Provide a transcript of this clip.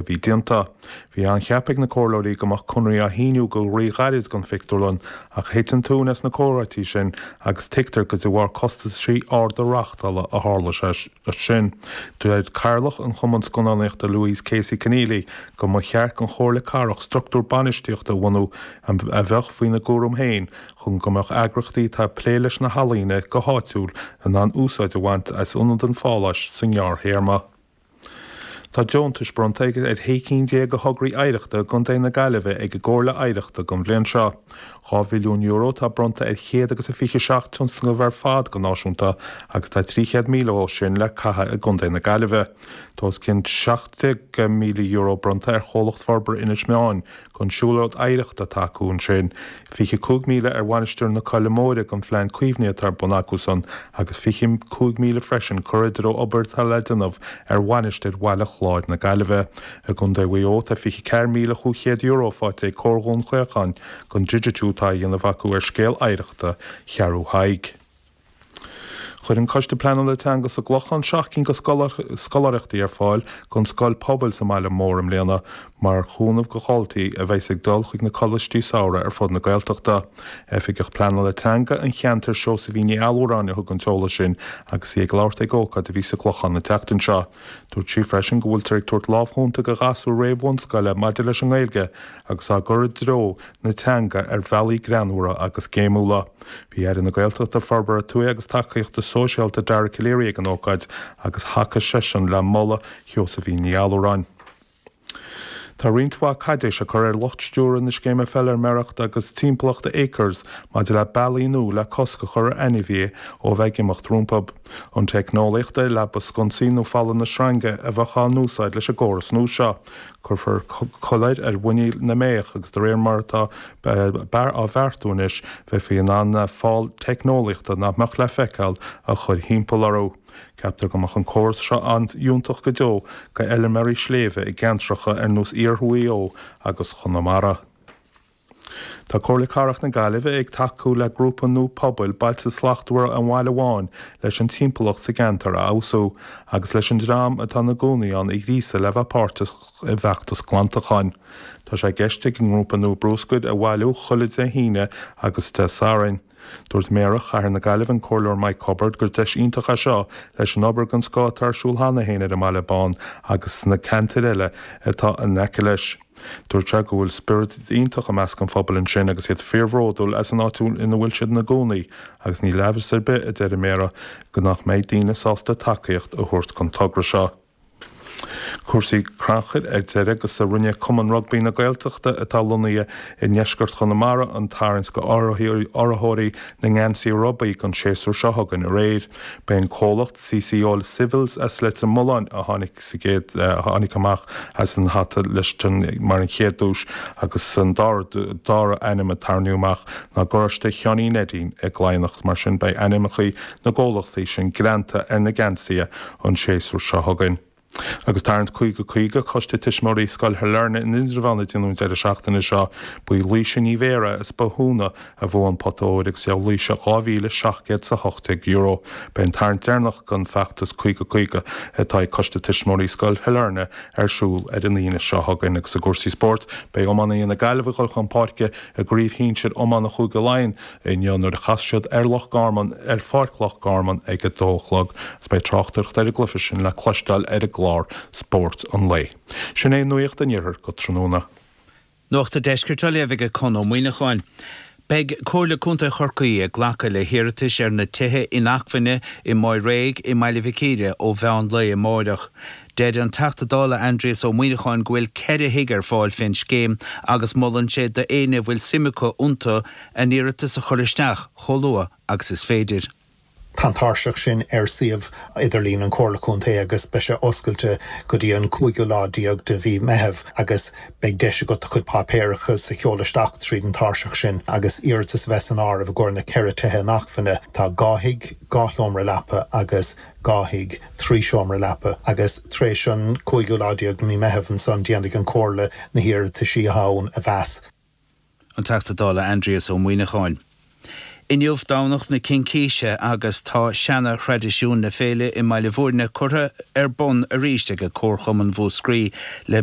a bhí déanta. Bhí ceaptha ag na comhairleoirí go mbeadh conradh á shíniú go rí-ghairid don phictiúrlann, ach thit an tóin as na comhráití sin agus tuigtear gur de bharr costaisí arda reáchtála a tharla sé sin. Deir Cathaoirleach an Chumann Scannánaíochta Louise Casey Conneely go mba cheart don Chomhairle Cathrach structúr bainistíochta a bhunú a bheadh faoina gcúram féin chun go mbeadh eagraíochtaí atá ag plé leis na healaíona go háitiúil in ann úsáid a bhaint as ionad an Pháláis sa ngearrthéarma. Tá deontais bronnta ar 16 cinn de thograí oidhreachta i gContae na Gaillimhe ag an gComhairle Oidhreachta don bhliain seo. Dhá mhilliún euro atá bronnta ar chéad agus a fiche seacht tionscnamh ar fad go náisiúnta agus tá 300,000 dó sin le caitheadh i gContae na Gaillimhe. Tá os cionn €17,000 bronnta ar Chomhlacht Forbartha Inis Meáin, Don siúlóid oidhreachta atá acu ansin, 25 míle ar Mhainistir na Coille Móire don phlean caomhnaithe atá ar bun acusan agus 25 míle freisin curtha i dtreo obair atá le déanamh ar Mhainistir Bhaile Chláir na Gaillimhe. I gContae Mhaigh Eo tá €24,500 faighte ag Comhar Dhún Chaocháin don digitiú atá á dhéanamh acu ar scéal oidhreachta Cheathrú Thaidhg. Chuir an Coiste Pleanála Teanga sa gClochán seacht gcinn de scoláireachtaí ar fáil don scoil pobail sa mbaile mór i mbliana mar chúnamh do dhaltaí a bheas ag dul chuig na Coláistí Samhraidh ar fud na Gaeltachta. Oifigeach Pleanála Teanga an cheantair, Seosaimhín Ní Allmhuráin a thug an t-eolas sin agus í ag labhairt ag ócáid a bhí sa gClochán an tseachtain seo. Dúirt sí freisin go bhfuiltear ag tabhairt lámh chúnta do ghasúir réamh-bhunscoile maidir leis an nGaeilge agus á gcur i dtreo na teanga ar bhealaí greanmhara agus gnaíúla. Bhí Aire na Gaeltachta, Forbartha Tuaithe agus Tacaíochta Sóisialta, Dara Calleary, ag an ócáid agus thacaigh seisean le moladh Sheosaimhín Ní Allmhuráin. Tá roinnt mhaith caidéis á cur ar lucht stiúradh na Scéime Feilméarachta agus Timpeallachta Acres maidir le bealaí nua le cosc a chur ar ainmhí ó bheith ag imeacht rompu. An teicneolaíocht ar leaba sconsaí nó fálanna sreinge a bheadh á n-úsáid leis an gcóras nua seo. Cuirfear coiléir ar mhuiníl na mbeithíoch agus de réir mar atá an beart á bheartú anois bheifí in ann fál teicneolaíochta nach mbeadh le feiceáil a chur thimpeall orthu. Ceaptar go mbeadh an córas seo an-iontach go deo d'fheilméaraí sléibhe i gceantracha ar nós iarthar Mhaigh Eo agus Chonamara. Tá Comhairle Cathrach na Gaillimhe ag tacú le grúpa nua pobail, Bailte Slachtmhara an Bhaile Bháin, leis an timpeallacht sa gceantar a fheabhsú agus leis an dream atá ina gcónaí ann a ghríosadh le bheith páirteach i bhfeachtas glantacháin. Tá sé i gceist ag an ngrúpa nua bruscar a bhailiú chuile Dé hAoine agus Dé Sathairn. Dúirt Méara Chathair na Gaillimhe, an Comhairleoir Mike Cubbard, gur deis iontach é seo leis an obair den scoth atá ar siúl cheana féin ar an mBaile Bán agus sna ceantair eile atá in aice leis. Dúirt sé go bhfuil spiorad iontach i measc an phobail ansin agus iad fíorbhródúil as an áit ina bhfuil siad ina gcónaí agus níl amhras ar bith, a deir an Méara, nach mbeidh daoine sásta tacaíocht a thabhairt don togra seo. Cúrsaí crannchuir ar deireadh agus rinne Cumann Rugbaí na Gaeltachta, atá lonnaithe i ndeisceart Chonamara, an tarraingt do urraitheoirí na ngeansaí rubaí don séasúr seo chugainn aréir. B'é an comhlacht CCO Civils as Leitir Mealláin a tháinig amach as an hata mar an chéad duais agus an dara ainm a tarraingíodh amach ná garáiste Sheáinín Neidín i gCladhnach. Mar sin beidh ainmneacha na gcomhlachtaí sin greanta ar na geansaithe an séasúr seo chugainn. Agus Tarraingt 50 50, Coiste Tuismitheoirí Scoil Shailearna in Indreabhán a déanadh an deireadh seachtaine seo, ba í Laoise Ní Bhéarra as Bothúna a bhuaigh an pota óir agus gheobhaidh Laoise €2,718. Beidh an tarraingt deireanach den Feachtas 50 50 atá ag Coiste Tuismitheoirí Scoil Shailearna ar siúl ar an Aoine seo chugainn. Agus i gcúrsaí spóirt, beidh iománaithe na Gaillimhe ag dul chun páirce i gCraobh Shinsir Iomána Chúige Laighean, inniu nuair a chasfas siad ar Loch Garman, ar Pháirc Loch Garman ag a dó a chlog agus beidh tráchtaireacht ar an gcluiche sin le cloisteáil ar an gclár Spórt an Lae. Sin é Nuacht an Iarthair go tráthnóna. Nuacht an Deiscirt á léamh ag Conn Ó Muíneacháin. Beidh Comhairle Contae Chorcaí ag glacadh le hiarratais ar na tithe inacmhainne i Maigh Réidh i mBaile Mhic Íre ó mheán lae amárach. Deir an Teachta Dála Aindrias Ó Muíneacháin go bhfuil ceithre thigh ar fáil fén scéim agus molann sé do éinne a bhfuil suim acu iontu a n-iarratas a chur isteach chomh luath agus is féidir. Tá an tairseach sin ar suíomh idirlín an Chomhairle Contae agus beidh sé oscailte go dtí an cúigiú lá déag de mhí Meitheamh agus beidh deis agat do chuid páipéarachas a sheoladh isteach tríd an tairseach sin agus iarratas a bheith san áireamh i gcomhair na ceithre tithe inacmhainne. Tá dhá thigh, dhá sheomra leapa agus. dhá thigh, trí seomra leapa, agus tar éis an cúigiú lá déag de mhí Meitheamh ansan déanfaidh an Comhairle na hiarrataisí sin a mheas. An Teachta Dála Aindrias Ó Muíneacháin. Inniu Domhnach na Cincíse agus tá seana thraidisiún na féile i mBaile Mhúirne curtha ar bun arís ag Comharchumann Mhúscraí le